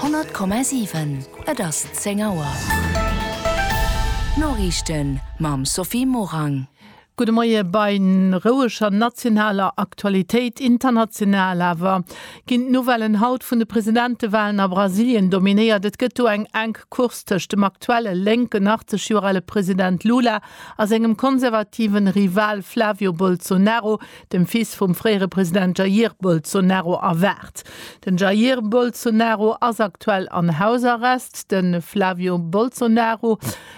Honnert Komma siwen, Et ass 10 Auer. D'Noriichten mam Sophie Morang. Gudde Moie bei roueger nationaler Aktualitéit, international awer. Ginn d'Nouvellen haut vun de Presidentewalen a Brasilien dominéiert? Et gëtt do eng enk Course tëscht dem aktuelle lénken, 80 Joer ale President Lula a sengem konservative Rival Flávio Bolsonaro, dem Fils vum fréiere President Jair Bolsonaro, erwaart. Den Jair Bolsonaro ass aktuell an Hausarrest, de Flávio Bolsonaro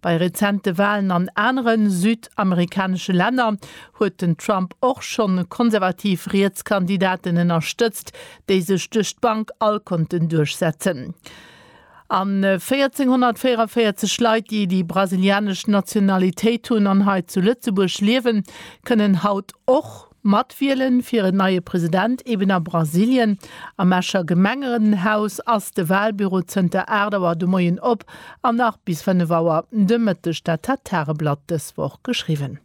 Bei rezente Walen an anere südamerikanesche Länner huet den Trump och scho konservativ riets Kandidaten ënnerstëtzt, déi sech duerch d'Bank all konnten duerchsetzen. A 1.444 Leit, déi déi brasilianesch Nationalitéit hunn an hei zu Lëtzebuerg liewen, kënnen haut och, Matwielen fir en neie President eben a Brasilien. Am Escher Gemengerenhaus ass de Walbüro zënter 8 Auer de Moien op an nach bis 5 Auer de Mëtteg, dat hat d'Tageblatt dës Woch geschriwwen.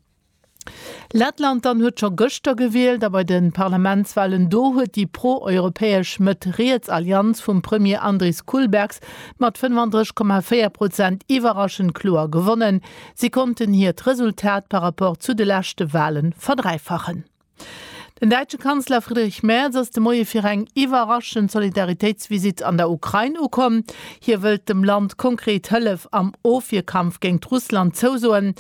Lettland dann huet scho gëschter gewielt a bei de Parlamentswalen do huet déi pro-europäesch Mëtt-Riets Allianz vum Premier Andris Kulbergs mat 35,4 Prozent iwwerraschend kloer gewonnen. Si konnten hiert Resultat par rapport zu de leschte Wale verdräifachen. Den däitsche Kanzler Friedrich Merz ass de Moie fir eng iwwerraschend Solidaritéitsvisitt an der Ukrain ukomm. Hie wëllt dem Land konkret Hëllef am Ofwierkampf géingt Russland zousoen.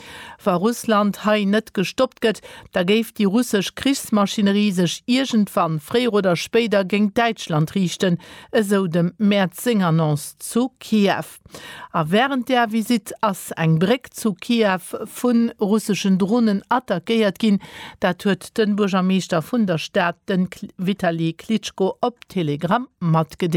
Wa Russland hei net gestoppt gëtt, da géif déi russesch Krichsmaschinerie sech iergendwann, fréier oder spéider, géingt Däitschland riichten, esou dem Merz seng Annonce zu Kiew. Stad. A wärend där Visitt ass eng Bréck zu Kiew vu russeschen Dronen attackéiert ginn. Dat huet de Buergermeeschter vun der Stad, de Vitali Klitschko op Telegram matgedeelt.